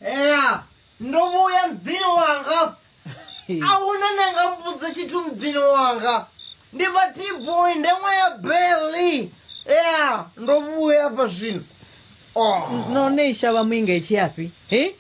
ea ndo vhuya mudzini wanga a huna ne nga mbudza tshithu mudzini wanga ndi vha tboy nde ṅwa ya beli ea ndo vhuya afha zwino oh. no ne shavha muinga i tshiyafhi he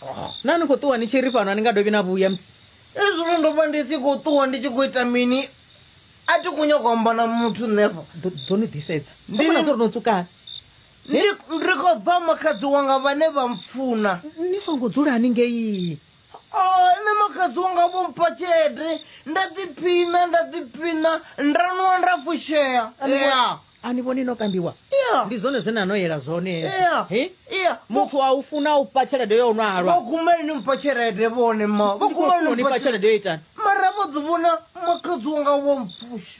oh. na ni khou ṱuwa ni tshi ri fhano a ni nga dovhi na vhuya musi ezwino ndo vha ndi si khou ṱuwa ndi tshi khou ita mini a ti khou nyaka amba na muthu nṋefha ḓo ni ḓisedza ndi na zwo ri no tsukana Ni ri, Ri khou bva makhadzi wanga vhane vha mpfuna. Ni songo dzulani ngei. O, nṋe makhadzi wanga vho mpha tshelede, nda ḓiphiṋa, nda ḓiphiṋa, nda nwa nda fushea. Ya. A ni vhoni no kambiwa? Ya. Ndi zwone zwe na no yela zwone hezwo. Ya. He? Ya. Muthu a u funa u fha tshelede yo nwa halwa. Vho guma ni mpha tshelede vhone ma. Vho Ndi khou guma funa u ni ni fha fha tshelede. tshelede yo itani? Mara vho ḓi vhona makhadzi wanga vho mpfusha.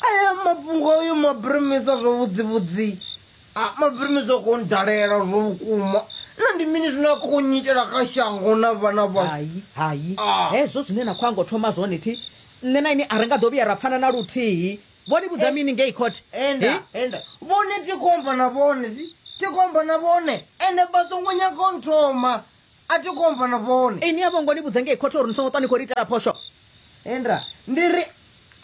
aya mafhungo ayo mabremesa zwa vhudzivhudzi a mabremesa ko ndalela zwo vhukuma na ndi mini zwine a khou nyitela kha shango na vhana vha hai hai Ah. hezwo zwine na khou ango thoma zwone thi nṋe na ini a ri nga ḓo vhuya ra pfana na luthihi vho ni vhudza mini ngei court enda Hi? enda vhone tikomba na vhone ti- tikomba na vhone ende vha songo nyaka u nthoma a thi khou amba na vhone ini a vho ngo ni vhudza ngei khothe uri ni songo ṱwa ni khou ri itela phosho enda ndi ri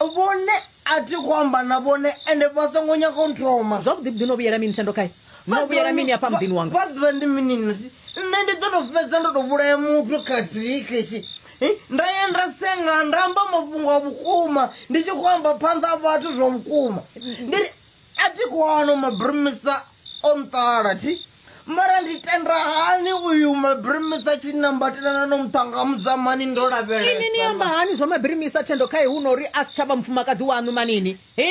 vhone a thi khou amba na vhone ende vha songo nyaga u nthoma zwavhuḓi vhuḓi no vhuyela mini thendo khae no vhuyela mini afha muḓini wanga vha ḓivha ndi mini nati nṋe ndi ḓo to fhedza ndo to vhulaya muthu khathihi ketshi eh, nda ya nda senga nda amba mafhungo a vhukuma ndi tshi khou amba phanḓa a vhathu zwa vhukuma ndi ri a thi khou ano mabrumisa o nṱala thi mara ndi tenda hani uyu mabirimisa tshi nambatelana no muṱhanga mudzamani ndo lavhelesa ini ni amba hani zwa mabirimisa thendo khae hu no uri a si tsha vha mufumakadzi waṋu manini hi